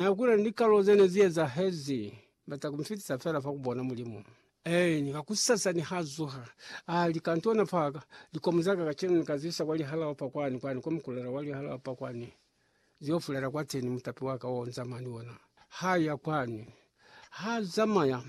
Na kwile ni likalo ze ne zi ezahezi. Ba ta ku fitisa fela fa ku bona Mulimu. Eeni, kakusasa niha zuha, a li, Kantona fa ka, likomo za ka kacenu ni ka zisa kwa lihalao pa kwani, kwani kwa mukulela wa lihalao pa kwani, zi yo fulela kwateni, mutapi wa ka o nzama ni ona. Ha ya kwani. Ha zamaya,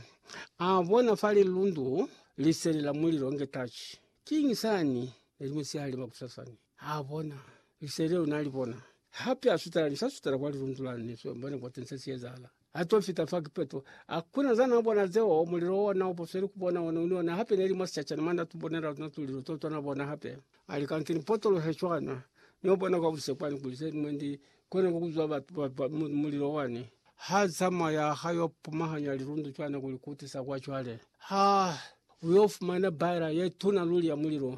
a bona fa lilundu, Liseli la Mulilo nge tachi. Kiñi sani? Ne li musihali makusasani. Ha bona lise leo na li bona, hape a sutela ni sa sutela kwa lilundu la ni so mbone kwa tense si ezahala. A to fita fa kipeto, a kuna za na bona zeo, mulilo o na uposweli ku bona one ni one, hape ne li mwa sicacana mwa na tu bonela luna tulilo to twa na bona hape. A li, Ka nto ni potolohe cwana, no bona kwa buse kwani kuli se mwe ndi kone ku kuzwa batu ba, ba, mu, mulilo wani. Ha zamaya ha yo pumahanya lilundu cwana ku li kutisa kwa cwale. Ha, u yo fumana baela ye tuna luli ya mulilo,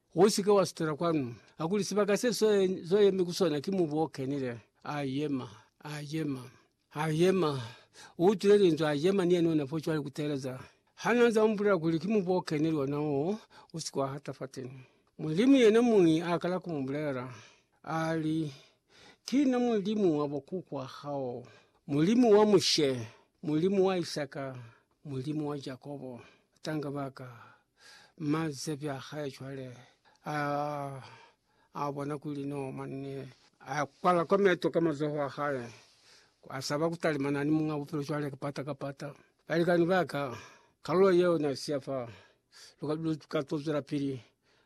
Usike wa sutela kwanu. Hakuli sibaka se so yemi ku sona ki mubu o kenile. A yema. A yema. A yema. U utwile linzwi, a yema ni yena ona fo cwale kuteeleza. Ha na za mubulela kuli ki mubu o kenile ona wo, usike wa hata fateni. Mulimu yena muñi a kala ku mubulela. A li, Ki na Mulimu wa bo kukwa hao, Mulimu wa Mushe, Mulimu wa Isaka, Mulimu wa Jakobo, tanga baka. Mazebi a hae cwale a, a bona kuli no manne a kwala kwa meto ka mazoho a hae, a saba ku talimana ni Muñ'a Bupilo cwale kapata kapata. Balikani ba ka, kalulo yeo n'a siya fa, lu ka, lu ka to zwela pili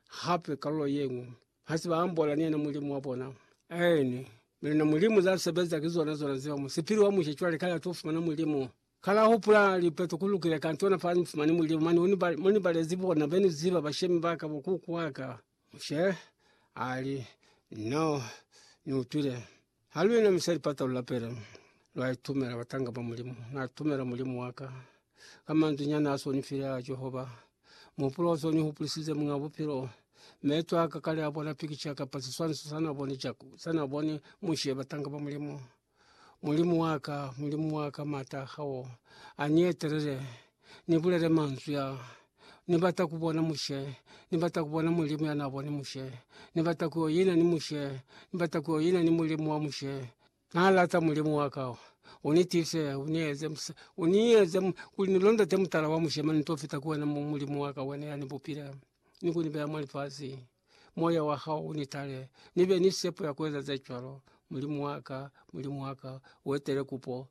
hape kalulo ye ñwi. Ha se ba ambola ni yena Mulimu wa bona. Aeni, mi luna Mulimu za sebeza ki zona zona zeo. Musipili wa musha cwale kale a t'o fumana Mulimu. Kale a hupula lipeto ku lukile kantona fa ni fumani mulimu mane mo ni balezi bona be ni ziba bashemi ba ka bo kuku wa ka. Mushe a li, No, ni utwile. Ha lu inamisa lipata lu lapele, lwa itumela batanga ba Mulimu. Na itumela Mulimu wa ka. Ka manzwi nyana a s'o ni file a Jehova, muhupulo o s'o ni hupulisize Muñ'a Bupilo, meto a ka kale a bona pikica kapa siswaniso sa n'a boni Mushe batanga ba Mulimu. Mulimu wa ka, Mulimu wa ka, m'ata a hao a ni etelele, ni bulele manzwi a, Ni bata ku bona Mushe, ni bata ku bona Mulimu ya n'a boni Mushe, ni bata ku yo ina ni Mushe, ni bata ku yo ina ni Mulimu wa Mushe. N'a lata Mulimu wa ka, u ni tiise, u ni eze, u ni eze kuli ni londote mutala wa Mushe, mane ni t'o fita ku wena, Mulimu wa ka, wena ya ni bupile ni ku ni beya mwa lifasi. moya wa hao u ni tale, ni be ni sepo ya ku eza ze cwalo. Mulimu wa ka, Mulimu wa ka, u etele kupo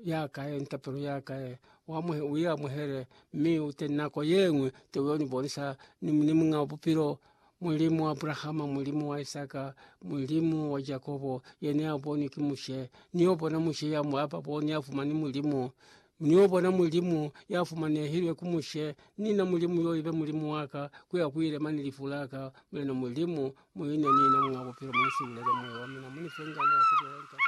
ya ka ye ni tapelo ya ka ye, u amuhe, u i amuhele, mi u te nako ye ñwi te u y'o ni bonisa ni, ni Muñ'a Bupilo, Mulimu wa Abrahama, Mulimu wa Isaka, Mulimu wa Jakobo, yena ya bonwi ki Mushe, ni y'o bona Mushe ya mu aba bo, ni ya fumani Mulimu. Niyo bona Mulimu ya fumanehilwe ku Mushe, ni na Mulimu yo ibe Mulimu waka, kuya kuile mani lifu laka, Mulena Mulimu, muine nina Muñ'a Bupilo, munisiulele moya wa mina, munife ngano ya kubulela litatazi.